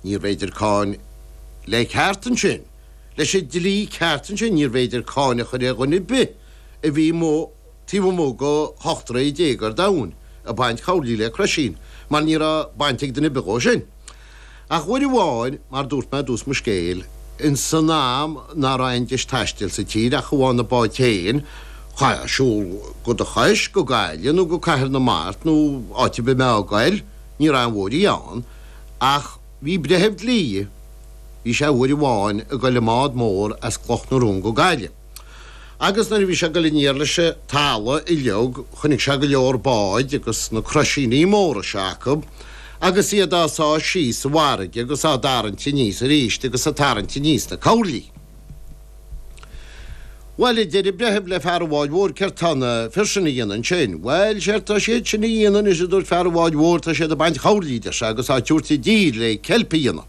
Níorbh fhéidir cáin le ceart ansin, leis an dlí ceart ansin, níorbh fhéidir cáin a chur ar dhuine ar bith a bhí amuigh, taobh amuigh go heachtra i dtéagar an domhain, ag baint coirlí le croisín, mar ní raibh baint ag duine ar bith dhó sin. Ach uair amháin, mar dúirt mé i dtús mo scéil, ins an am ná raibh aon deis taistil sa tír ach amháin na báid féin, chaithfeá siúl dhe do chois go Gaillimh nó go Cathair na Mart nó áit ar bith a mbeifeá ag goil, ní raibh aon bhóithrí ann. Ach bhí breitheamh dlí, bhí sé uair amháin ag dul i mbád mór as Cloch na Rón go Gaillimh. Agus nuair a bhí sé ag dul aniar leis an talamh uiliog chonaic sé go leor báid agus na croisíní móra seo acu agus iad á sá síos sa bhfarraige agus á dtarraingt aníos aríst agus ag tarraingt aníos na coirlí. Bhail, a deir an breitheamh le fear an bháid mhóir, céard tá na fir sin a dhéanamh ansin? Bhail, séard tá siad sin a dhéanamh anois, a dúirt fear an bháid mhóir, tá siad ag baint coirlí, a deir sé, agus á tabhairt i dtír le ceilp a dhéanamh.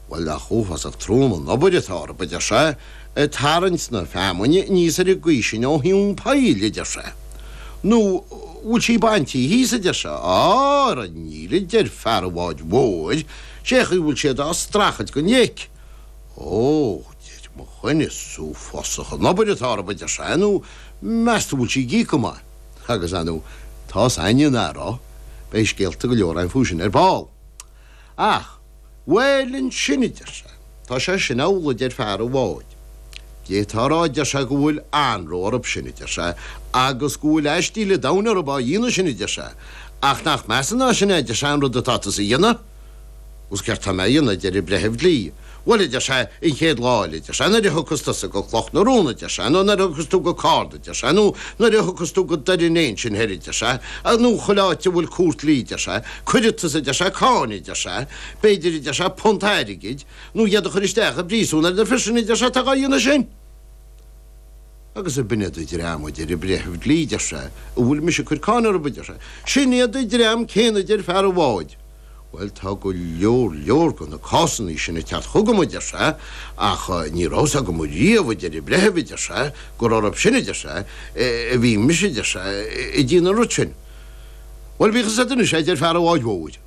Bhail, nach uafásach trom an obair atá orthu, a deir sé, ag tarraingt na feamainne aníos ar an gcaoi sin ó thóin an phoill, a deir sé. Nó an bhfuil sí baintí thíos, a deir sé. Á, ara níl, a deir fear an bháid mhóir, sé chaoi a bhfuil siad á streachailt dhen leic. Ó, a deir mo dhuine, is uafásach an obair atá orthu, a deir sé, nó meas tú bhfuil sí ag íoc go maith? agus, ar ndóigh, tá's a'inn nach raibh, beidh scéalta go leor a'm fúithi sin ar ball. Ach, bhuel ansin, a deir sé, tá sé sin amhlaidh, a deir fear an bháid. D'fhéadfá a rá, a deir sé, go bhfuil anró orthu sin, a deir sé, agus go bhfuil aistíl a' domhain orthu á dhéanamh sin, a deir sé, ach nach measa ná sin é, a deir sé, an rud atá tusa a dhéanamh? Agus céard tá mé a dhéanamh, adeir an breitheamh dlí. Bhuel, adeir sé, an chéad lá eile, adeir sé, nuair a thiocfas tusa go Cloch na Rón, adeir sé, nó nuair a thiocfas tú go Cárna, adeir sé, nó nuair a thiocfas tú go Doire an Fhéich ansin thoir, adeir sé, nó chuile áit a bhfuil cúirt dlí, adeir sé, cuirfidh tusa, adeir sé, cáin, adeir sé, b'fhéidir, adeir sé, punt airgid, nó iad a chur isteach i bpríosún ar na fir sin, adeir sé, atá dhá dhéanamh sin. Agus ab in iad an dream, a deir an breitheamh dlí, deir sé, a bhfuil mise ag cur cáin orthu, a deir sé. Sin iad an dream céanna, a deir fear an bháid. Bhuel, tá go leor, leor de na cásannaí sin ag teacht chugam, a deir sé, ach ní raibh a fhios agam riamh, a deir an breitheamh, a deir sé, gur orthu sin, a deir sé, a bhí mise, a deir sé, ag déanamh an rud sin. Bhuel, bíodh a fhios a'd anois é, a deir fear an bháid mhóir.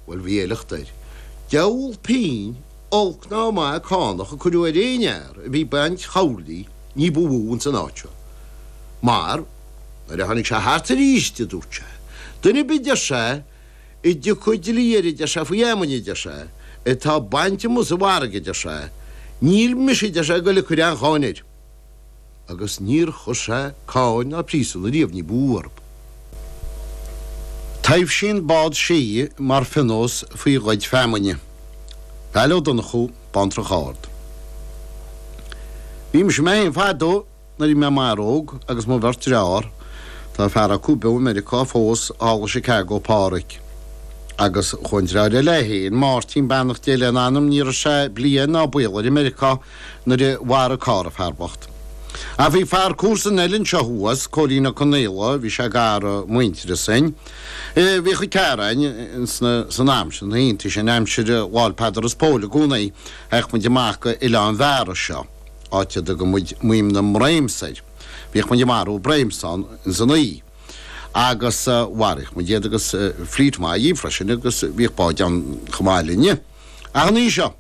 Bhuel, bhí a shliocht air. Deabhal pínn olc ná maith cánach a cuireadh ar aon fhear a bhí ag baint choirlí ní ba mhó ins an áit seo. Mar, nuair a tháinig sé thart aríst, a dúirt sé, duine ar bith, deir sé, a dtiocfadh dlí air, a deir sé, faoi fheamainn, a deir sé, atá bainte amuigh sa bhfarraige, a deir sé, níl mise, a deir sé, ag goil ag cur aon cháin air. agus níor chuir sé cáin ná príosún ariamh ní ba mhó orthub. Taibhsíonn Bád Sí mar phionós faoi ghoid feamainne. Vail Ó Donnchú, Bantrach Ard. Bhí mise mé féin fadó nuair bhí mé i m'fhear óg agus mo bheirt deartháir, tá fear acu beo i Meiriceá fós, thall i Chicago, Páraic, agus chuaigh an deartháir eile é féin, Máirtín, beannacht Dé lena anam, ní raibh sé bliain ná baol air i Meiriceá, nuair a mharaigh carr an fear bocht. Ach bhí fear comharsan eile anseo thuas, Cóilín Ó Conaola, bhí sé gar i muintearas dhúinn. Bhíodh an Ciaráin ins na, san am sin, na laethanta sin, aimsir Lá'l Peadar is Póil, i gcónaí, a théadh muid amach go Oileán Bheara seo, áit a dtugadh muid Maidhm na mBréims air. Bhíodh muid ag marú bréims ann ins an oíche. Agus mharaíodh muid iad agus fleit mhaith dhíob freisin agus bhíodh báid ann chomh maith linne. Ach an oíche seo.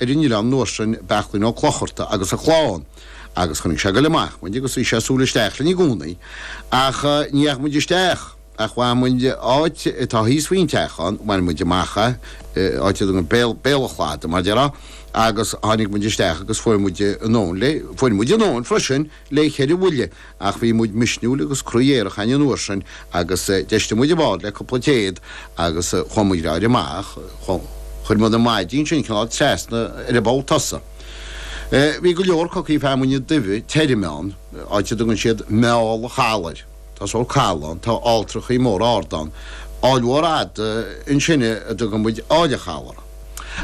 ar an oileán nuair sin Beachlín Ó Clocharta agus a chlann agus chonaic sé ag goil amach muid agus bhí sé ag súil isteach linn i gcónaí ach ní dheachaigh muid isteach ach bhain muid áit atá thíos faoin teach ann bhain muid amach é áit a dtugann béal, béal an chlada mar dheirfá agus tháinig muid isteach agus fuair muid ár ndóthain le, fuair muid ár ndóthain freisin. le ceithre bhuille, ach bhí muid misniúil agus croí aerach againn an uair sin agus d'fheistigh muid an bád le cúpla téad agus chuaigh muid láidir amach. Chuir muid na maidí ansin cineál trasna ar an bpoll tosaigh. Bhí go leor cocaí feamainne duibhe tirime ann, áit a dtugann siad Meall an Chalaidh air. Tá sórt caladh ann, tá alltrachaí móra arda ann, aill mhór fhada ansin a dtugann muid Aill a' Chabhail uirthi.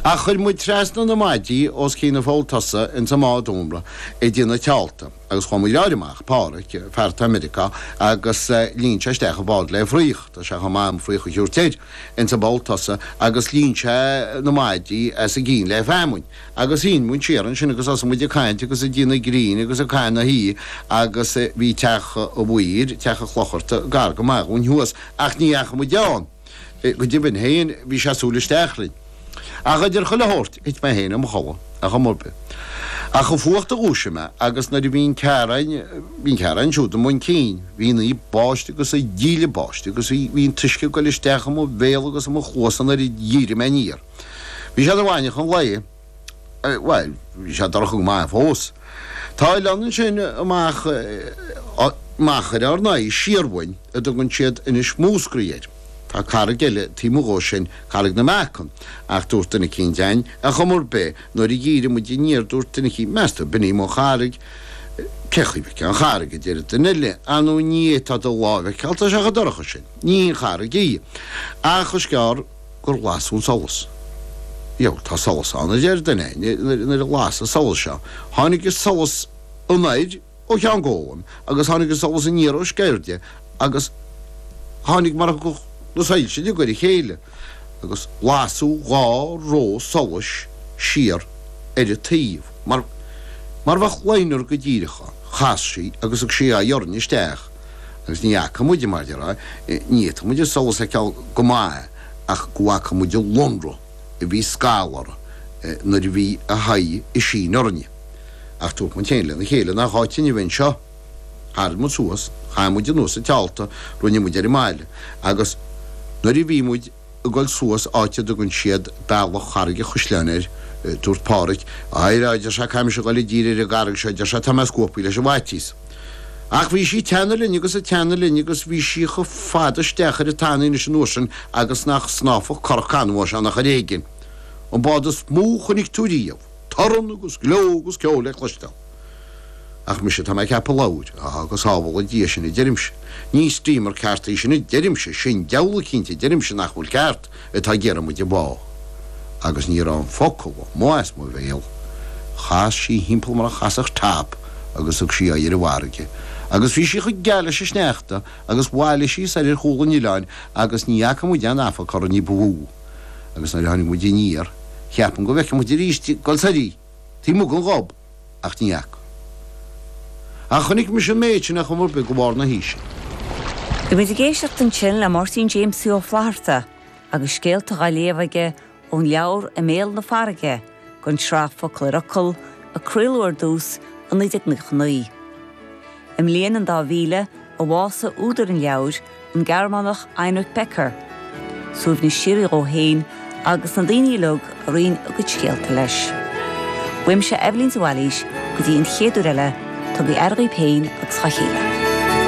Ach chuir muid trasna na maidí os cionn an pholl tosaigh ins an mbád iomartha ag déanamh teálta, agus chuaigh muid láir amach, Páraic, fear atá i Meiriceá, agus líon sé isteach an bád le fraoch, tá sé chomh maith dhom fraoch a thiúirt air, ins an bpoll tosaigh, agus líon sé na maidí os a gcionn le feamainn. Agus tháinig muid siar ansin agus thosaigh muid ag caint agus ag déanamh grinn agus ag caitheamh na hoíche agus bhí teach an mhaoir, teach an Chlochartaigh, gar go maith dhúinn thuas ach ní dheachaigh muid ann, go deimhin féin bhí sé ag súil isteach linn. Ach idir chuile shórt thit mé féin i mo chodladh ar chuma ar bith. Ach an fuacht a dhúisigh mé agus nuair a bhí an Chiaráin, bhí an Chiaráin siúd i mbun cinn, bhí an oíche ag báisteach agus an díle báistí agus bhí, bhí an t-uisce ag goil isteach i mo bhéal agus i mo chluasa nuair a dhírigh mé aniar. Bhí sé ina mhaidneachan lae, bhuel, bhí sé dorcha go maith fós. Tá oileán ansin amach, amach ar ár n-aghaidh, siar uainn a dtugann siad Inis Múscraí air. Tá carraig eile taobh 'muigh dhó sin, Carraig na Meacan, ach dúirt duine eicínt againn, ar chuma ar bith, nuair a dhírigh muid aniar, dúirt duine eicínt, meas tú, b'in í mo charraig? Cén chaoi a bhfeicfeá an charraig, a deir duine eile, ar ndóigh ní fhéadfá do láimh a fheiceáil, tá sé chomh dorcha sin. Ní hí an charraig í. Ach is gearr. gur las an solas. Ó, tá solas ann, a deir duine, nuair a las an solas seo, tháinig an solas anoir ó Cheann Gólaim agus tháinig an solas aniar ó Sceirde agus tháinig mar a thiocfadh na soilse de ghaire a chéile agus lasadh dhá roth solais siar ar a taobh amhail mar bheadh loinnir go díreach ann. Chas sí agus thug sí a haghaidh orainn isteach. agus ní fhaca muide, mar déarfá, ní fhéadfadh muide solas a fheiceáil go maith ach go bhfaca muide an lonradh a bhí scalfhara nuair a bhí a haghaidh isteach orainne. Ach dúirt muid féin lena chéile, nach áit muid a bheith anseo? Tharraing muid suas, chaith muid anuas an téalta, rinne muid ar an mbaile, agus nuair a bhí muid. ag dul suas áit a dtugann siad Bealach Charraig an Chaisleáin air. Dúirt Pádhraic, a Réamoinn, a deir sé, caithfimid a dhul i dtír ar an gcarraig seo, a deir sé, tá mé scuabthaí leis an bhfaitíos. Ach bhí sí ag teannadh linn agus ag teannadh linn agus bhí sí chomh fada isteach ar an tanaíos an uair sin agus nach snámhfadh currach canbháis ann ach ar éigin, an bád is mó a chonaic tú riamh. Torann agus gleo agus ceol le cloisteáil. Ach mise, tá mé ag ceapadh, a labhair, Á, go sábhála Dia sinn a deirimse. Ní steamer ceart í sin a deirimse, sin deabhal cinnte a deirimse nach bhfuil ceart, atá ag iarraidh muid a bhá. Agus níor fhan an focal amuigh as mo bhéal. Chas sí thimpeall mar a chasfadh top agus thug sí aghaidh ar an bhfarraige. Agus bhí sí chomh geal leis an sneachta agus bhailigh sí soir ar chúl an oileáin agus ní fhaca muid aon amharc uirthi ní ba mhó. agus nuair a tháinig muid aniar, cheap mé go bhfeicfeadh muid aríst ag goil soir í taobh amuigh den ghob, ach ní fhaca. Ach chonaic mise an méid sin a chomh maith le barr na haoise. Bhí muid ag éisteacht ansin le Máirtín Jaimsie Ó Flaithearta agus scéalta á léamh aige ón leabhar I mBéal na Farraige, den tsraith Focal ar Fhocal a craoladh ar dtús i 1999. I mbliain an dá mhíle a bhásaigh údar an leabhair, an Gearmánach Heinrich Becker, suaimhneas síoraí dhó fhéin agus na daoine uilig a roinn a gcuid scéalta leis. Uaimse Eibhlín de Bhailís go dtí an chéad uair eile, tugaidh aire dhaoibh féin agus dha chéile.